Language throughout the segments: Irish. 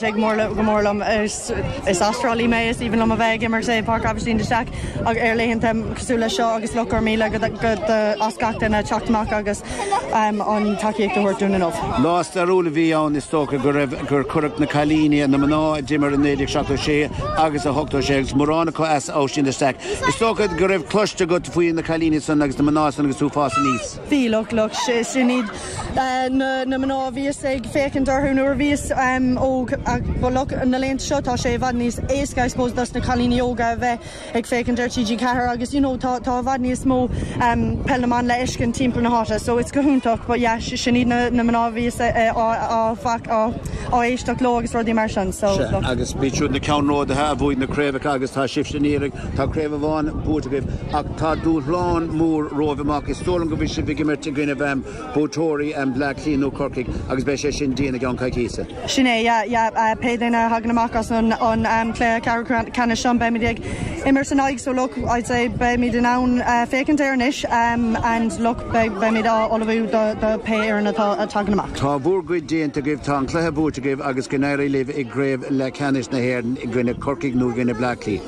Tig go mór liom, is as Trá Lí mé, is aoibhinn liom a bheith ag imirt i Páirc Aibhistín de Staic agus ar laethanta cosúil leis seo agus look, go raibh míle as gach duine teacht amach agus an tacaíocht a thabhairt dúinn inniu. Lá stairiúil a bhí ann, is dócha go raibh, gur cuireadh na cailíní, na mná a d'imir i 1976 agus in 86 agus mórán acu as Aibhistín de Staic, is dócha go raibh cloiste agat faoi na cailíní san agus na mná san agus tú ag fás aníos. Bhí look, look, sin iad na, na mná a bhíos ag féachaint orthu nuair a bhíos óg ach but look, na laethanta seo tá sé i bhfad níos éasca I suppose dos na cailíní óga a bheith ag féachaint ar TG4 agus you know tá, tá i bhfad níos mó Peil na mBan le fheiscint timpeall na háite so it's go hiontach but yeah sin iad na, na mná a bhíos á, á, á, á éisteacht leo agus rudaí mar sin so look. Agus b'iad siúd na ceannródaithe a bhuaigh na craobhacha agus tá sibhse ag iarraidh Tá craobh amháin buaite agaibh ach tá dúshlán mór romhaibh amach. Is dóigh liom go bhfuil sibh ag imirt i gcoinnibh buaiteoirí Bleá Cliath nó Corcaigh agus beidh sé sin dian i gceann coicíse. Sin é, yeah, yeah. Pé duine a thagann amach as an cluiche ceathrú ceannais seo beimid ag imirt san aghaidh so look, I'd say beimid in ann féachaint air anois and look beimid ag ullmhú do pé fhoireann atá a tagann amach. Tá bhur gcuid déanta agaibh, tá an cluiche buaite agaibh agus go n-éirí libh i gcraobh leathcheannais na hÉireann i gcoinne Corcaigh nó i gcoinne Bleá Cliath.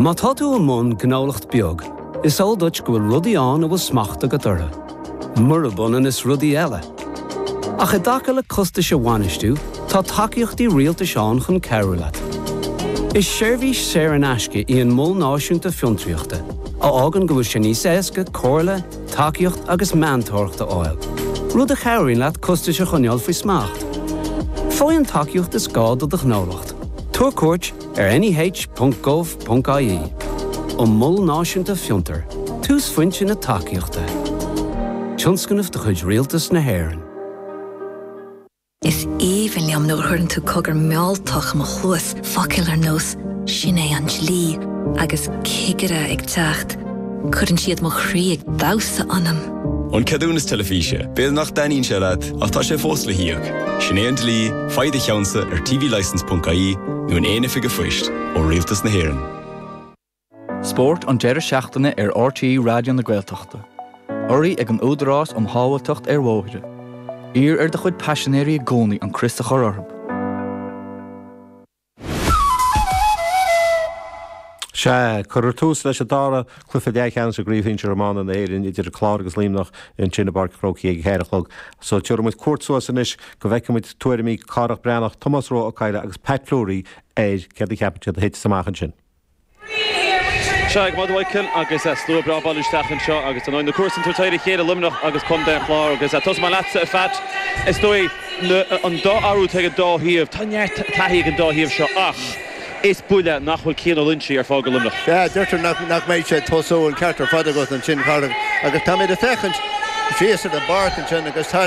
Má tá tú i mbun gnólacht beag, is eol duit go bhfuil rudaí ann a bhfuil smacht agat orthu, murab ionann is rudaí eile. Ach i dtaca le costais a bhainistiú, tá tacaíochtaí rialtais ann chun cabhrú leat. Is seirbhís saor in aisce í an Mol Náisiúnta Fiontraíochta, a fhágann go bhfuil sé níos éasca comhairle, tacaíocht agus meantóireacht a fháil, rud a chabhraíonn leat costais a choinneáil faoi smacht. Faigh an tacaíocht is gá do do ghnólacht. Tabhair cuairt ar neh.gov.ie An Mol Náisiúnta Fiontair, túsphointe na tacaíochta, tionscnamh de chuid Rialtas na hÉireann. Is aoibhinn liom nuair a chuireann tú cogar mealltach i mo chluas, focail ar nós 'sin é an dlí' agus 'cigire ag teacht'. Cuireann siad mo chroí ag damhsa ionam. An ceadúnas teilifíse, b'fhéidir nach dtaitníonn sé leat ach tá sé fós le híoc. Sin é an dlí, faigh do cheannsa ar tvlicence.ie nó in aon oifig phoist ó Rialtas na hÉireann. Spórt an deireadh seachtaine ar RTÉ Raidió na Gaeltachta. Urraithe ag an Údarás um Shábháilteacht ar Bhóithre. Iarr ar do chuid paisinéirí i gcónaí an crios a chur orthu. Sea, cuirfear tús leis an dara cluiche leathcheannais i gCraobh Shinsir Iomána na hÉireann idir An Clár agus Luimneach ansin i bPáirc an Chrócaigh ag a ceathair a chlog. So, tiubhraidh muid cuairt suas anois go bhfeicfidh muid tuairimí Cárthach Breathnach, Tomás Rua Ó Cadhla agus Pat Fleury ar céard a cheapann siad a thitfidh amach ansin. Seo againn muid ar an ardán agus slua breá ag bailiú isteach anseo agus na comharsain ag tabhairt faoina chéile, Luimneach agus Contae an Chláir agus tosaím leatsa a Pheait. Is dóigh an dá athrú atá ag an dá thaobh, tá neart taithí ag an dá thaobh seo ach is buille nach bhfuil Cian Ó Loinsigh ar fáil do Luimneach. Sea, deirtear nach mbeidh sé ag tosú an ceart ar fad agat ansin Pádraig agus táimid ag féachaint síos ar an bpáirc ansin agus tá.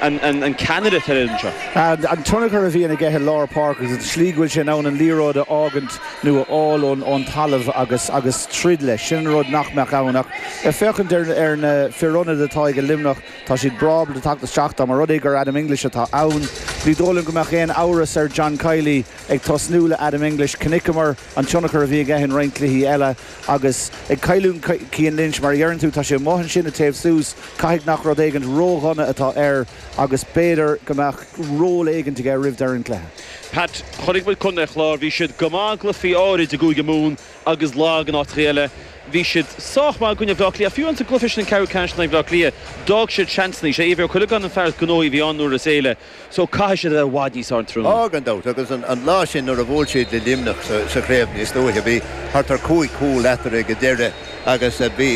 an ceannaire atá iontu. An tionchar a bhíonn aige i lár páirce agus an slí go bhfuil sé in ann an liathróid a fhágaint nó a fháil ón talamh agus agus troid leis, sin an rud nach mbeadh ann ach ag féachaint ar ar na fir ionaid atá ag Luimneach, tá siad breá le teacht isteach dá mba rud é gur Adam English atá ann. Ní dóigh liom go mbeadh aon amhras ar John Kiely ag tosnú le Adam English. Chonaiceamar. an tionchar a bhí aige in roinnt cluichí eile agus ag cailliúint Cian Lynch, mar a dheireann tú, tá sé amuigh ansin ag téamh suas, caithfidh nach rud éigint ró-dhona atá air agus b'fhéidir go mbeadh ról éigint aige roimh deireadh an chluiche. Pat, Chonaic muid Contae an Chláir, bhí siad go maith i gcluichí áirid i gCúige Mumhan agus lag in áiteachaí eile. Bhí siad sách maith i gcoinne Bhleá Cliath ach fiú ins an gcluiche sin sa Cheathrú Ceannais in aghaidh Bhleá Cliath, d'fhág siad seansanna. 'Sé Éibhear Ó Cuileagáin an fear is gnóthaí a bhí ann uaireanta eile. So, caithfidh siad a bheith i bhfad níos airdeallaí. Á, gan dabht, agus an lá sin nuair a bhuail siad le Luimneach sa chraobh níos luaithe, bhí thart ar chúig chúilín eatarthu ag an deireadh agus bhí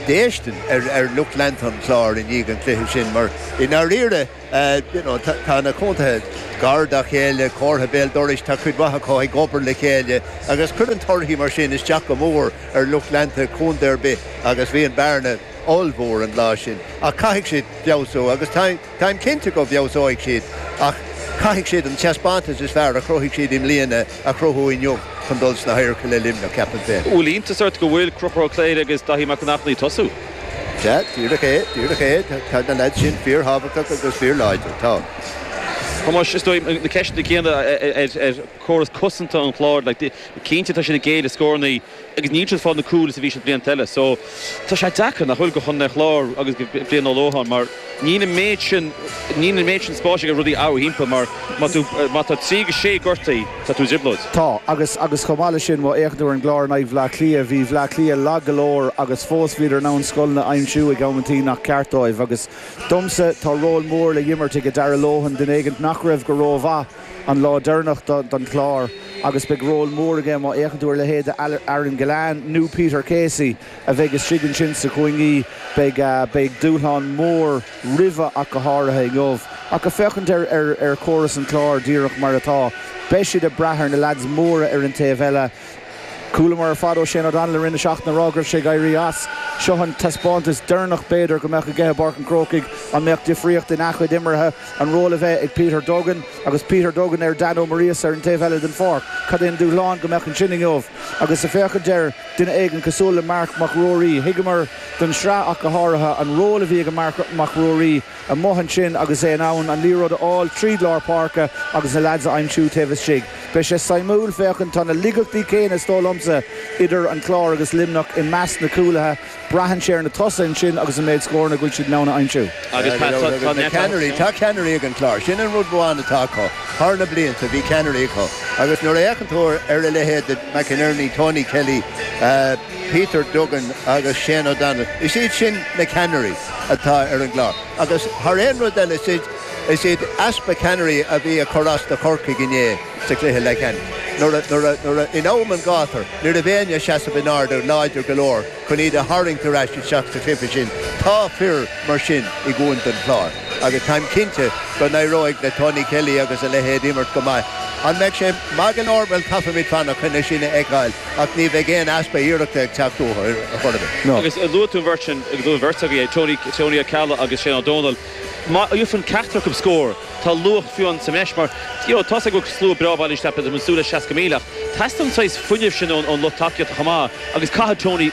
déistin ar lucht leanta an Chláir i ndiaidh an chluiche sin mar, i ndáiríre, you know, tá na contaetha gar dá chéile, comharsa béal dorais, tá cuid mhaith acu ag obair le chéile agus cuireann torthaí mar sin isteach go mór ar lucht leanta contae ar bith agus bhí an bhearna ollmhór an lá sin ach caithfidh siad feabhsú agus táim cinnte go bhfeabhsóidh siad ach caithfidh siad an taispeántas is fearr a chruthaigh siad i mbliana a chruthú inniu chun dul sna hadhairce le Luimneach, ceapaim féin. Bhuel, iontas ort go bhfuil Conchúr Ó Cléirigh agus Daithí Mac an Airchinnigh ag tosú. Sea, díreach é, díreach é, tá na leaids sin fíorthábhachtach agus fíorláidir, tá. Thomáis, is dóigh na ceisteanna céanna ar chóras cosanta an chláir, cinnte tá siad ag géilleadh scóranna. agus níl siad ag fáil na gcúl mar a bhí siad blianta eile so tá sé deacair, nach bhfuil, do Chontae an Chláir agus do Brian Ó Lócháin mar níl an méid sin, níl an méid sin spáis aige rudaí a athrú timpeall mar má tú, má tá 3-6 gortaithe tá tú i dtrioblóid. Tá, agus, agus chomh maith leis sin má fhéachann tú ar an gClár in aghaidh Bhleá Cliath, bhí Bhleá Cliath lag go leor agus fós bhíodar in ann scoilteanna a aimsiú ag amanntaí nach ceart dóibh agus domsa tá ról mór le himirt ag Darragh Lohan duine éigint nach raibh go ró-mhaith an lá deireanach don Chlár agus beidh ról mór aige má fhéachann tú ar leithéid de Aaron Gillane nó Peter Casey a bheidh istigh ansin sna cúinní. Beidh dúshlán mór roimhe ach go háirithe inniu. Ach ag féachaint ar chóras an chláir díreach mar atá, beidh siad ag brath ar na leaids móra ar an taobh eile. Chualamar ar fad ó Shane O'Donnell i rith na seachtaine a rá go raibh sé ag éirí as. Seo an taispeántas deireanach b'fhéidir go mbeadh aige i bPáirc an Chrócaigh. An mbeadh difríocht ina chuid imeartha an ról a bheith ag Peter Duggan agus Peter Duggan ar Dan Ó Muirgheasa ar an taobh eile den pháirc? Cad é an dúshlán go mbeadh ansin inniu agus ag féachaint ar, duine éigin cosúil le Marc Mac Ruairí? Thuigeamar ón Sraith ach go háirithe, an ról a bhí ag Marc Mac Ruairí. amuigh ansin agus é in ann an liathróid a fháil tríd lár páirce agus na leaids a aimsiú taobh istigh. Beidh sé suimiúil féachaint tá na laigeachtaí céanna is dóigh liomsa idir an Clár agus Luimneach i measc na cúlaithe. Braitheann sé ar na tosaithe ansin agus an méid scóranna a bhfuil siad in ann a aimsiú. Agus tá na ceannairí, tá ceannairí ag an gClár. Sin an rud amháin atá acu. Thar na blianta bhí ceannairí acu agus nuair a fhéachann tú ar a leithéid de McInerney, Tony Kelly, Peter Duggan agus Shane O'Donnell, is iad sin na ceannairí atá ag an gClár agus thar aon rud eile is iad easpa ceannairí a bhí ag cur as do Chorcaigh inné sa chluiche leathcheannais nuair a, in am an ghátair, ní raibh éinne ag seasamh an fhóid láidir go leor chun iad a tharraingt ar ais isteach sa chluiche sin. Tá fir mar sin i gContae an Chláir agus táim cinnte go n-éireoidh le Tony Kelly agus a leithéid imirt go maith. An mbeidh sé maith go leor? Bhuel, caithfimid fanacht chun é sin a fheiceáil. Ach ní bheidh aon easpa iarrachta ag teacht uathu ar chor ar bith. Agus luaigh tú an bheirt sin, agus luaigh an bheirt agaibh é, Tony, Tony Ó Ceallaigh agus Shane Ó Domhnaill. Má fhaigheann ceachtar acu scór, tá luach faoi leith ann sa mbreis mar, you know, tá's agaibh go bhfuil slua breá bailithe isteach, b'fhéidir, ag súil le 60,000 ach teastaíonn an saghas fuinnimh sin ón lucht tacaíochta chomh maith agus caithfidh Tony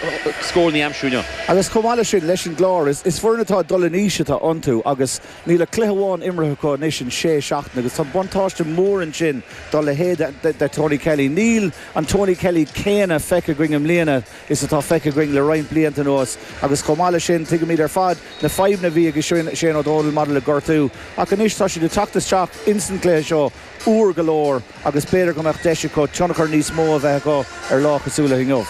scórannaí a aimsiú inniu. Agus chomh maith leis sin, leis an gClár, is foireann atá ag dul in aois atá iontu agus Níl ach cluiche amháin imeartha acu anois in sé seachtaine agus tá buntáiste mór ansin dá leithéid de Tony Kelly. Níl an Tony Kelly céanna feicthe againn i mbliana is atá feicthe againn le roinnt blianta anuas agus chomh maith leis sin tuigimid ar fad na fadhbanna a bhí ag Shane Ó Dónaill maidir le gortú ach anois tá siad ag teacht isteach insan gcluiche seo. úr go leor agus b'fhéidir go mbeadh deis acu tionchar níos mó a bheith acu ar lá cosúil le inniu.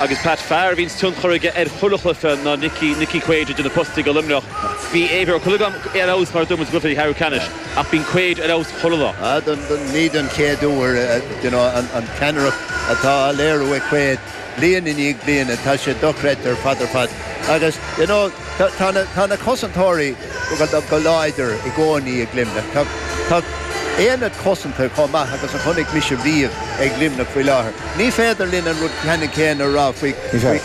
Agus Pat, fear a bhíonns tionchar aige ar chuile chluiche ná Nicky, Nicky Quaid idir na postaí do Luimneach. Bhí Éibhear Ó Cuileagáin ar fheabhas mar a dúirt muid i gcluiche ceathrú ceannais ach bíonn Quaid ar fheabhas chuile lá. Ní don chéad uair, you know, an ceannaireacht atá á léiriú ag Quaid. Bliain i ndiaidh bliana tá sé dochreidte ar fad ar fad agus you know tá na cosantóirí go láidir i gcónaí ag Luimneach. Tá aonad cosanta chomh maith agus a chonaic mise riamh ag Luimneach faoi láthair. Ní féidir linn an rud ceannann céanna a rá faoi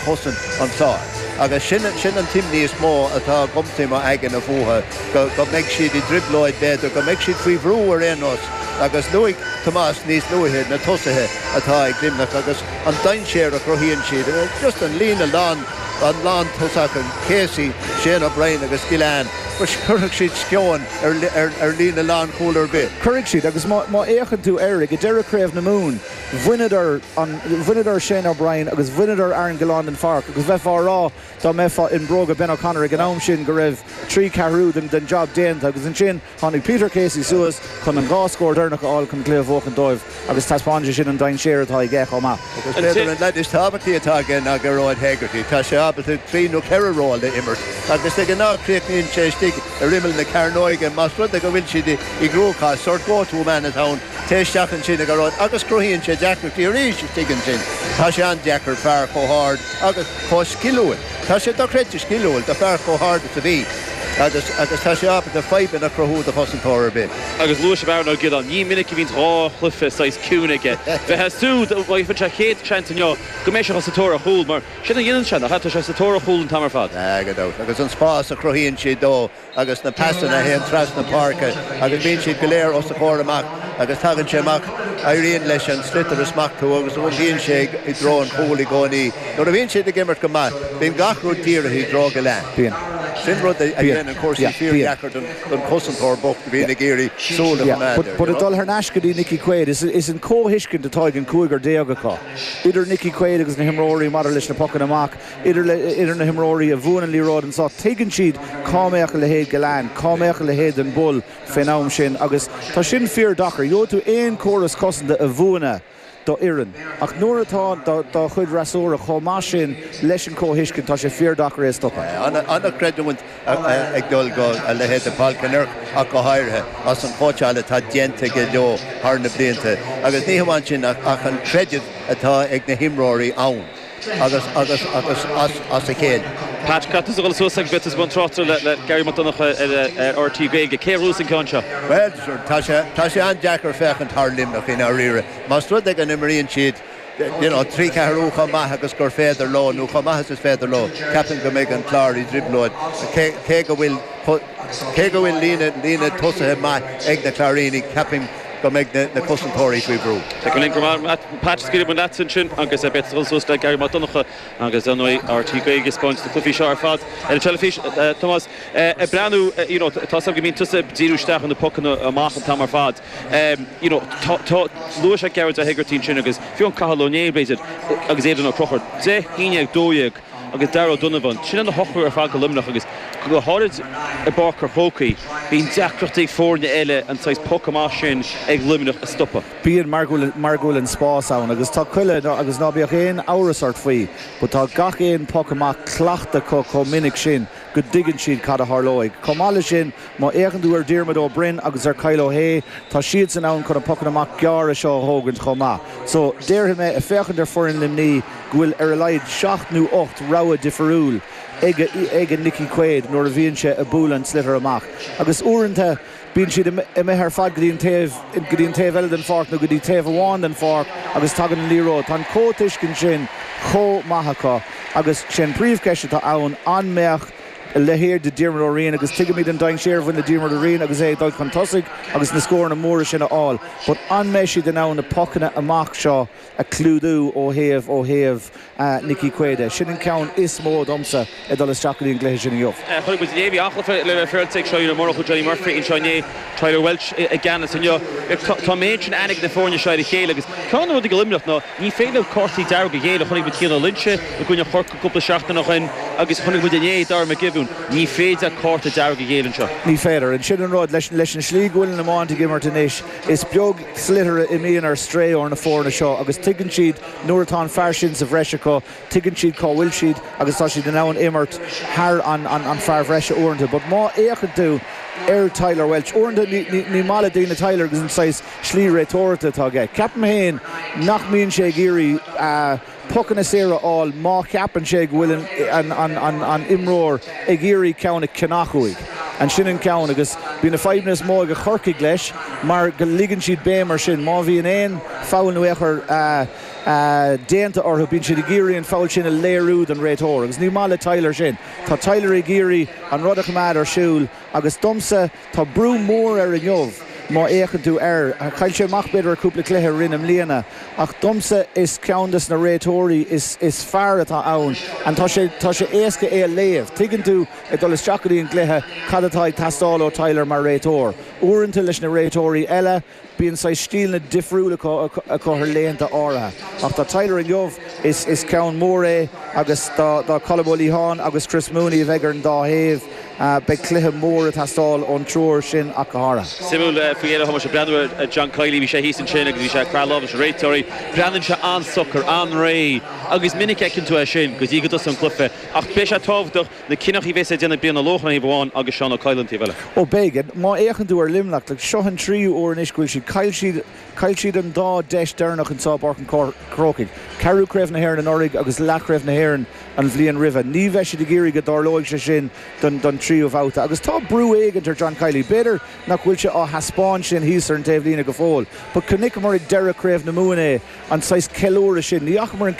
chosaint an Chláir agus sin sin an t-imní is mó atá agamsa i mo aigne fúthu go go mbeidh siad i dtrioblóid b'fhéidir go mbeidh siad faoi bhrú ar aon nós agus luaigh Tomás níos luaithe na tosaithe atá ag Luimneach agus an dainséar a chruthaíonn siad. Just an líne lán, an lán tosach, Casey, Shane O'Brien agus Gillane, cuirfidh siad sceoin ar líne lánchúl ar bith. Cuirfidh siad agus má fhéachann tú air, ag deireadh Chraobh na Mumhan, bhaineadar an, bhaineadar Shane O'Brien agus bhaineadar Aaron Gillane den pháirc agus bheifeá ag rá dá mbeifeá i mbróga Ben O'Connor ag an am sin go raibh trí ceathrú den jab déanta agus ansin Tháinig Peter Casey suas chun an dhá scór deireanach a fháil chun an cluiche a bhuachan dóibh agus thaispeáin sé sin an dainséar atá aige chomh maith. B'fhéidir an leaid is tábhachtaí atá aige ná Gearóid Hegarty. Tá sé ábalta trí nó ceithre ról a imirt agus de ghnáth críochnaíonn sé istigh ar imeall na cearnóige más rud é go bhfuil siad i gcruachás. Sórt go to man atá ann, téigh isteach ansin a Ghearóid agus cruthaíonn sé deacrachtaí arís istigh ansin. Tá sé an-deacair fear chomh hard agus chomh sciliúil. Tá sé dochreidte sciliúil do fear chomh hard is a bhí agus agus tá sé ábalta fadhbanna a chruthú do chosantóir ar bith. Agus luaigh sibh Aaron Ó Giolláin. Ní minic a bhíonn dhá chluiche saghas ciúin aige. Bheifeá ag súil, má gheibheann sé an chéad seans inniu, go mbeidh sé ag dul sa tóir ar chúl. Mar sin a dhéanann sé, nach ea? Tá sé sa tóir ar chúl an t-am ar fad. Gan dabht. Agus an spás a chruthaíonn siad dó. agus na pasanna a théann trasna páirce agus bíonn siad go léir os a chomhair amach agus tagann sé amach, éiríonn leis an sliotar a smachtú agus iompaíonn sé i dtreo an chúil i gcónaí. Nuair a bhíonn siad ag imirt go maith, bíonn gach rud dírithe i dtreo Gillane. Sin rud a dhéanann cúrsaí fíordheacair don chosantóir bocht a bhíonn ag iarraidh súil a choimeád air. But ag dul thar n-ais go dtí Nicky Quaid, is an comhthuiscint atá ag an cúigear déag acu, idir Nicky Quaid agus na himreoirí maidir leis na pocanna amach, idir na himreoirí a bhuann an liathróid anseo, tuigeann siad cá mbeadh a leithéid de Gillane, cá mbeadh a leithéid den Bull fén am sin agus tá sin fíor dheacair. Gheobhaidh tú aon córas cosanta a mhúineadh do fhoireann ach nuair atá do chuid fhreasúra chomh maith sin leis an comhthuiscint, tá sé fíor dheacair é a stopadh. An-chreidiúint ag dul do a leithéid de Paul Kinnerk ach go háirithe as an chóitseáil atá déanta aige leo thar na blianta agus ní hamháin sin ach an creideamh atá ag na himreoirí ann. agus agus agus as as a chéile. Pat tá tusa ag dul suas a bheith i mbun tráchtaireacht le le Garry Mac Donncha ar ar RTÉ Gaeilge. Cé a bhuafas an ceann seo? Bhuel sure tá sé tá sé an-deacair féachaint thar Luimneach i ndáiríre. Más rud é go n-imríonn siad you know trí ceathrú chomh maith agus gur féidir leo nó chomh maith is is féidir leo ceapaim go mbeidh an Clár i dtrioblóid cé cé go bhfuil cé go bhfuil líne líne tosaithe maith ag na Cláirínigh ceapaim go mbeidh na cosantóirí faoi bhrú. Tig linn go maith a Pat scaoilfidh muid leat ansin agus beidh tú ag dul suas le Garry Mac Donncha agus ar ndóigh RTÉ Gaeilge ag spáint na cluichí seo ar fad ar an teilifís. Tomás ag breathnú you know tá a fhios agam go mbíonn tusa ag díriú isteach ar na pocanna amach an t-am ar fad you know tá luaigh sé Gearóid Ó hEigeartaigh ansin agus fiú amháin Cathal Ó Néill b'fhéidir agus Aidan Ó Conchúir deich haon déag dó dhéag agus Daragh Ó Donnabháin. Sin an t-ochtar ar fad go Luimneach agus go háirid i bPáirc an Chrócaigh. Bíonn deacracht ag foirne eile an saghas poc amach sin ag Luimneach a stopadh. Bíonn mar go bhfuil an spás ann agus tá chuile agus ná bíodh aon amhras ort faoi but tá gach aon poc amach cleachta acu chomh minic sin go dtuigeann siad cad a tharlóidh. Chomh maith leis sin, Má fhéachann tú ar Dhiarmaid Ó Broin agus ar Kyle Ó hAodha, tá siadsan ann chun na pocanna amach gearra seo a thógaint chomh maith. So, déarfaidh mé, ag féachaint ar foireann Luimní, go bhfuil ar a laghad seacht nó ocht rogha difiriúil ag Nickie Quaid nuair a bhíonn sé ag bualadh an tsliotair amach. Agus uaireanta, bíonn siad imithe ar fad go dtí an taobh, go dtí an taobh eile den pháirc nó go dtí taobh amháin den pháirc agus tagann an liathróid. Tá an comhthuiscint sin chomh maith acu agus sé an príomhcheist atá ann, an mbeadh, leithéidí Diarmuid Ó Riain agus tuigimid an dainséar a bhain le Diarmuid Ó Riain agus é ag dul chun tosaigh agus na scóranna móra sin a fháil but an mbeidh siad in ann na pocanna amach seo a chlúdú ó thaobh ó thaobh Nickie Quaid de? Sin an ceann is mó domsa ag dul isteach go dtí an gcluiche sin inniu. Chonaic muid Levi Athghafa le bheith fearrde ag seo inniu, murach Johnny Murphy anseo inné, Tyler Walsh i gceannas inniu. Tá an méid sin aithne ag na foirne seo ar a chéile agus ceann de na rudaí go Luimneach ná ní féidir leo cártaí dearga a ghéilleadh. Chonaic muid Cian Ó Loinsigh i gcoinne cúpla seachtain ó shin agus chonaic muid inné Darragh Mac Giobúin. Ní féidir cárta dearg a ghéilleadh anseo. Ní féidir. And sin an rud. Leis an slí go bhfuil an iomáint ag imirt anois, is beag sliotar a imíonn ar strae ós na foirne seo agus tuigeann siad nuair atá an fear sin sa bhreis acu, tuigeann siad cá bhfuil siad agus tá siad in ann imirt thar an fear bhreise uaireanta. But má fhéachann tú ar Tyler Walsh uaireanta, ní maith le daoine Tyler agus an saghas slí réiteoireachta atá aige. Ceapaim féin nach mbíonn sé ag iarraidh a. pocanna saora a fháil má cheapann sé go bhfuil an t-imreoir ag iarraidh ceann a cheannach uaidh. And sin an ceann agus bíonn na fadhbanna is mó ag a Chorcaigh leis mar go leagann siad béim ar sin. Má bhíonn aon foul nó éagóir déanta orthu bíonn siad ag iarraidh an foul sin a léiriú don réiteoir agus ní maith le Tyler sin. Tá Tyler ag iarraidh an rud a choimeád ar siúl agus domsa, Tá brú mór air inniu má fhéachann tú air. Chaill sé amach b'fhéidir ar chúpla cluiche i rith na mbliana ach domsa is ceann de na réiteoirí is fearr atá ann and tá sé tá sé éasca é a léamh. Tuigeann tú ag dul isteach go dtí an gcluiche cad atá ag teastáil ó Tyler mar réiteoir. Uaireanta leis na réiteoirí eile, Bíonn saghas stíleanna difriúla acu thar laethanta áirithe ach do Tyler inniu is ceann mór é agus do Colm Ó Liatháin agus Chris Mooney a bheidh ar an dá thaobh, beidh cluiche mór ag teastáil ón triúr sin ach go háirithe. Suimiúil faoi Fhéile a Thomáis ag breathnú ar John Kiely, bhí sé thíos ansin agus bhí sé ag craitheadh lámh leis na réiteoirí. Breathnaíonn sé an-socair, an-réidh agus is minic a fheiceann tú é sin go dtí go dtosaíonn cluiche ach beidh sé tábhachtach, Na cinneadh a bheas ag déanamh Brian Ó Lócháin taobh amháin agus Seán Ó Cadhla an taobh eile. Ó b'éigean, má fhéachann tú ar Luimneach, le seo an tríú uair anois go bhfuil siad caill siad caill siad an dá deis deireanach anseo i bPáirc an Chrócaigh, ceathrú Craobh na hÉireann anuraidh agus leathchraobh na hÉireann an bhliain roimhe. Ní bheidh siad ag iarraidh go dtarlóidh sé sin don don tríú bhabhta agus tá brú éigin ar John Kiely. B'fhéidir nach bhfuil sé á thaispeáint sin thíos ar an taobhlíne go fóill but chonaiceamar ag deireadh Craobh na Mumhan é, an saghas ceiliúradh sin. Ní fhacamar an